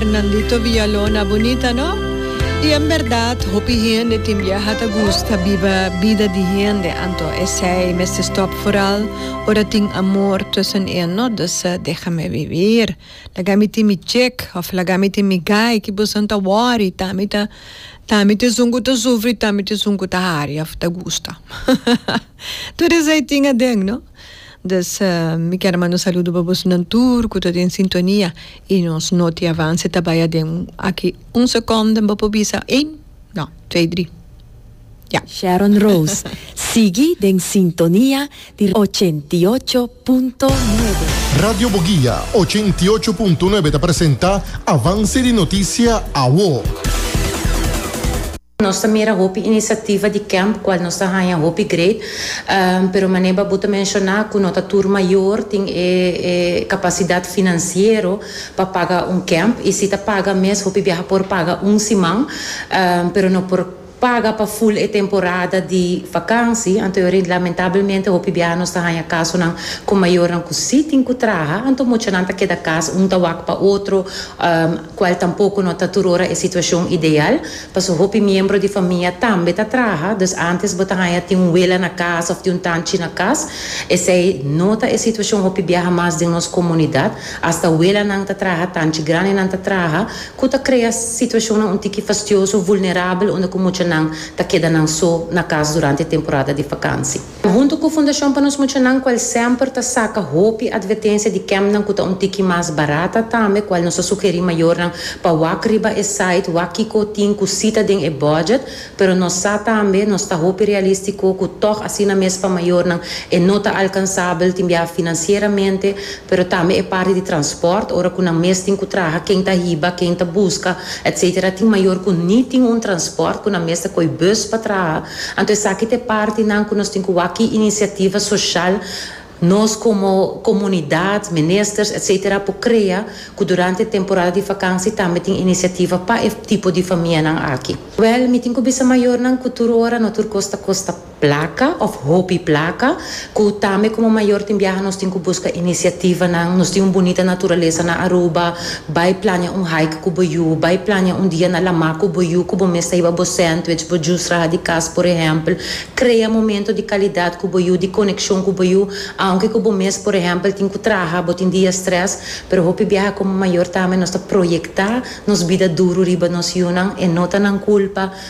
Nandito Villalona bunita no. Y en berdad hopi hende tin biaha ta gusta biba bida di hende anto esey mester stop foral ora tin amor tussen en no dus deha me vivir laga mi tin mi chick of laga mi tin mi guy ki boso ta worry ta mi ta ta mi ta esun cu ta sufri ta mi ta esun cu ta hari of ta gusta todo esey tin aden no. Dous mi kier manda un saludo pa bosonan tur ku ta den sintonia i nos noti avanse ta baya den aki un sekonda mi bo por bisa ein no trei dri ya. Sharon Rose sigui den sintonia di ochenta i ocho punto nuebe. Radio Boguia ochenta i ocho punto nuebe ta presenta avanse di notisia awo. Nos ta mira hopi inisiativa di kemp kual nos ta haña hopi great, pero manera babu ta menshoná ku no ta tur mayor tin e kapasidat finansiero pa paga un kemp i si ta paga mes hopi biaha por paga un siman, pero no por paga pa ful e temporada di vakansi, anto yo rint lamentablemente hopi biaha nos ta haña kasonan ku mayornan ku si tin ku traha, anto muchanan ta keda kas un ta wak pa otro, kual tampoko no ta tur ora e situashon ideal. Paso hopi miembro di famia tambe ta traha, dus antes bo ta haña tin un wela na cas of tin un tanchi na cas. Esei no ta e situacion hopi biaha mas den nos comunidad. Hasta welanan ta traha, tanchi grandenan ta traha, cu ta crea situacionnan un tiki fastioso, vulnerabel unda cu muchanan ta keda nan so na cas durante e temporada di vakansi. Huntu ku Fundashon pa Nos Muchanan kual semper ta saka hopi atvertensia di kempnan ku ta un tiki mas barata tambe kual nos ta sugerí mayornan pa wak riba e site wak kiko tin ku si ta den e bòdjèt pero nos sa tambe nos ta hopi realístiko ku tòg asina mes pa mayornan e no ta alkansabel tin biaha finansieramente pero tambe e parti di transpòrt ora ku nan mes tin ku traha ken ta hiba ken ta buska etc tin mayor ku ni tin un transpòrt ku nan mes ta koi bùs pa traha Anto esaki ta e partinan ku nos tin ku wak ki inisiativa soshal nos komo komunidat, ministers etc. Por krea ku durante e temporada di vakansi tambe tin inisiativa pa e tipo di famianan aki. Wèl, mi tin ku bisa mayornan ku tur ora no tur kos ta kosta plaka òf hopi plaka. Cu tambe como mayor tin biaha nos tin cu busca iniciativanan. Nos tin un bunita naturalesa na Aruba. Bay plania un hike cu bo yu. Bay plania un dia na lama cu bo yu cu bo mes ta hiba bo sandwich, bo juice raha di cas por ehempel. Crea momento di calidad cu bo yu, di coneccion cu bo yu. Aunke cu bo mes por ehempel tin cu traha, bo tin dia stress, pero hopi biaha como mayor tambe nos ta proyecta nos bida duru riba nos yunan. E no ta nan culpa.